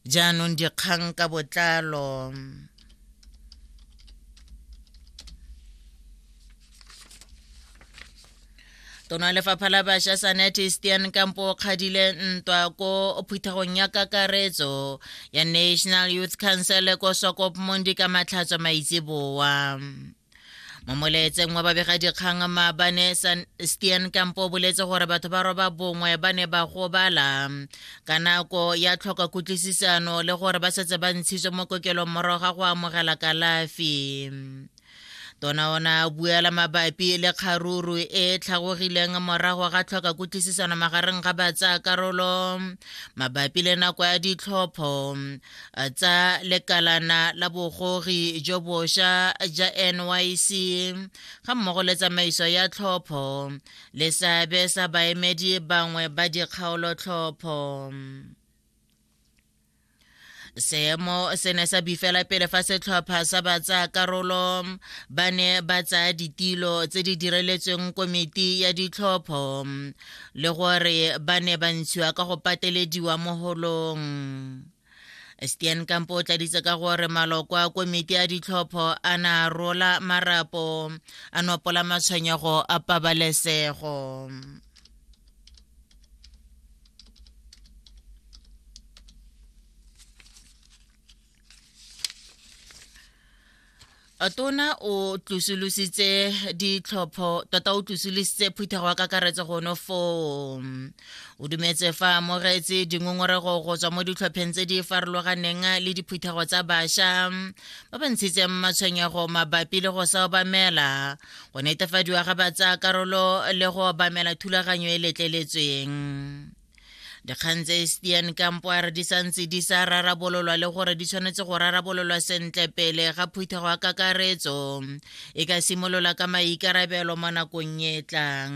jaanong dikgang ka botlalo tona lefapha la bašwa sanete stian kampo o kgadile ntwa ko phuthegong ya kakaretso ya national youth council ko sokop mondi ka matlhatso maitseboa mo molaetseng wa babegadikgang maabane stian kampo o boletse gore batho ba roba bongwe ba ne ba gobala ka nako ya tlhoka kutlwisisano le gore ba setse ba ntshitswe mo kokelong morago ga go amogela kalafi tona ona buela mabapi le kgaruru e tlhagogileng morago ga tlhoka kutlwisisano magareng ga batsa karolo mabapi le nako ya ditlhopho tsa lekalana la bogogi jo bosha ja nyc ga mmogo le tsamaiso ya tlhopho le seabe sa baemedi bangwe ba dikgaolotlhopho seemo se ne sa bifela pele fa setlhopha sa batsayakarolo ba ne ba tsaya ditilo tse di direletsweng komiti ya ditlhopho le gore ba ne ba ntshiwa ka go patelediwa mo holong stian kampo o tladitse ka gore maloko a komiti a ditlhopho a na rola marapo a nopola matshwenyego a pabalesego tona o tlosolositse ditlhopho tota o tlosolositse phuthego wa kakaretso gono foo o dumetse fa amogetse dingongorego go tswa mo ditlhopheng tse di farologaneng le diphuthego tsa bašwa ba ba ntshitseng matshwenyego mabapi le go sa obamela go netefadiwa ga ba tsaya karolo le go obamela thulaganyo e letleletsweng dikgang tse stian kampo a re di santse di sa rarabololwa le gore di tshwanetse go rarabololwa sentle pele ga phuthego ya kakaretso e ka simolola ka maikarabelo mo nakong e tlang